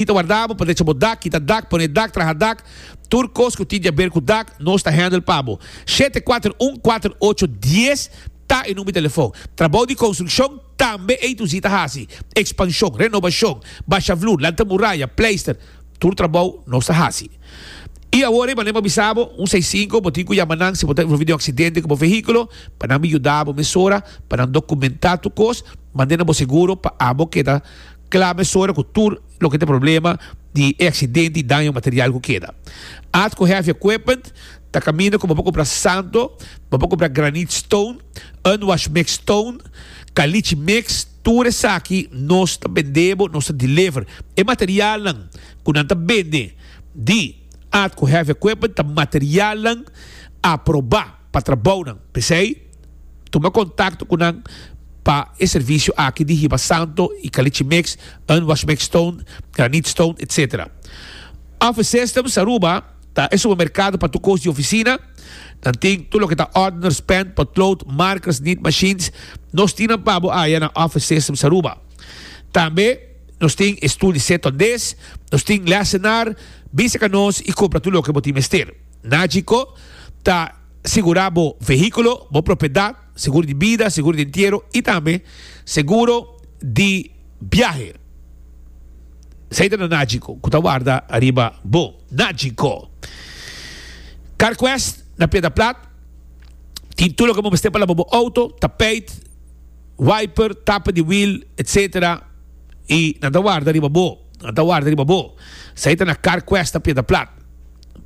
Tin ta warda bo pa drecha bo dak, kita dak, pone dak, traha dak, tur kos ku tin di aber ku dak, nos ta handle pa bo. Shete kuater un kuater ocho dies ta e number di telefon. Trabou di konstrukshon tambe ei tu si ta hasi, ekspanshon, renobashon, basha vloer, lanta muraya, pleister, tur trabou nos ta hasi. I awor ei mane bo a bisa bo, un seis sinku, bo tin ku yama nan si bo ta envolvi den un aksidente ku bo vehikulo, pa nan bin yuda bo mesora pa nan dokumentá tur kos, mande na bo seguro pa abo keda. Kla mes ora ku tur loke ta problema di e aksidente i daño material ku keda. At ku heavy equipment ta kaminda ku bo por kumpra santo, bo por kumpra granite stone, unwashed mixed stone, caliche mix, tur esaki nos ta bend'e bo, nos ta deliver. E materialnan ku nan ta bende di at ku heavy equipment ta materialnan aproba. pa trabounan. P'esei, tuma kontakto ku nan pa e servisio aki di hiba santo i kalichimex, unwashmex stone, granit stone, etc. Office Systems Aruba ta e supermerkado pa tur kos di ofisina. Nan tin tur loke ta ordeners, pen, potlood, markers, nit mashins. Nos tin nan pa bo haya na Office Systems Aruba. Tambe nos tin e stul di set tondez. Nos tin lèsenar. Bisa ka nos i kompra tur loke bo tin mester. Najico ta sigura bo vehiculo, bo propiedad, seguro di bida, seguro di entiero y tambe seguro di biahe. Esey ta na Najico cu ta warda ariba bo. Najico Carquest na Piedra Plat tin tur loke bo mester pa laba bo auto, tapijt, wiper, tapa di wiel etc. Y nan ta warda riba bo, nan ta warda riba bo. Esey ta na Carquest na Piedra Plat.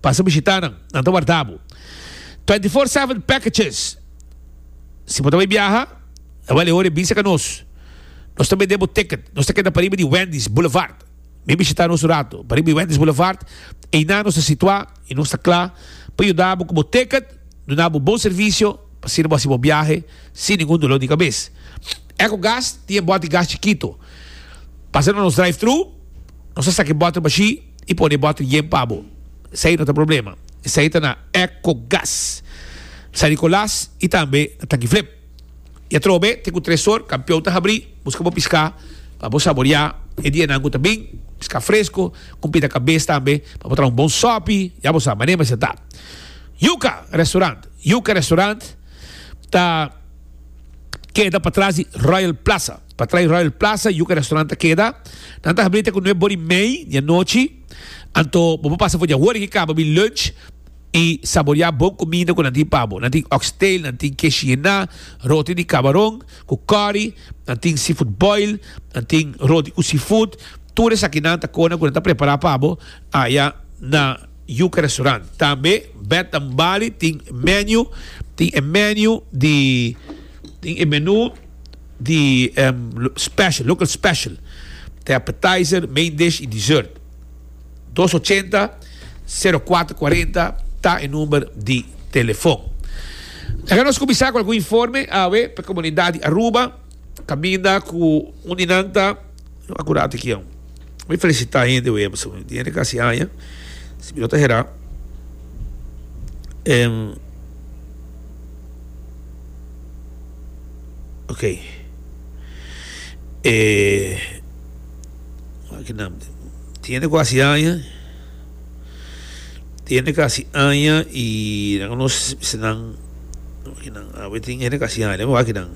Pasa bishita nan, nan ta warda bo. Twenty four seven packages Si bo ta bai biaha, e wale ora e bisa ka nos. Nos ta bende bo ticket. Nos ta keda pariba di Wendy's Boulevard. Bin bishita nos un ratu. Pariba di Wendy's Boulevard, einan nos ta situa i nos ta kla pa yuda bo ku bo ticket, duna bo bon servisio pa asina bo hasi bo biahe sin ningun dolor di kabes. Ecogas tin e bòt di gas chikito. Pasa na nos drive-thru, nos ta saka e bòt na bashí. I pone bottle yen pa bo. Esei no ta problema. Esei ta na Eco Gas, San Nicolas i tambe na Tanki Flip. I atrobe te ku tres or kampion ta habri buska bo piská pa bo saboreá e dianan ku ta bin, piská fresko, kumpita kabes tambe pa bo traha un bon sòpi, ya bo sa mané mester ta. Yuka Restaurant, Yuka Restaurant ta keda patras di Royal Plaza. Pa trai Royal Plaza, yuca restaurant ta keda. Nan ta habri te cu nueb bori mei di anochi. Anto bo por pasa for di ahora ki caba mi lunch y saborea bon cuminda cu nan tin pa bo. Nan tin oxtail, nan tin kesh yena, roti di cabaron cu curry, nan tin seafood boil, nan tin roti cu seafood. Tur esakinan ta cona cu nan ta prepara pa bo aya na yuca restaurant. Tambe Bed and Bali tin menu, tin e menu di tin e menu. di special, local special, te appetizer, main dish y dessert. Dos ochenta, sero kuater kuarenta ta e number di telefon. Laga nos kuminsá ku algun informe awe pa e komunidat di Aruba, kaminda ku un di nan ta, a ku rato aki aún. Mi felisitá e hende web esaki, di hende ku hasi aña, si bo no ta herá, em. Okey. E tiene kuasi aña, tiene kasi aña i nan konosnan, awe tin hende kasi aña, deme wak kinan.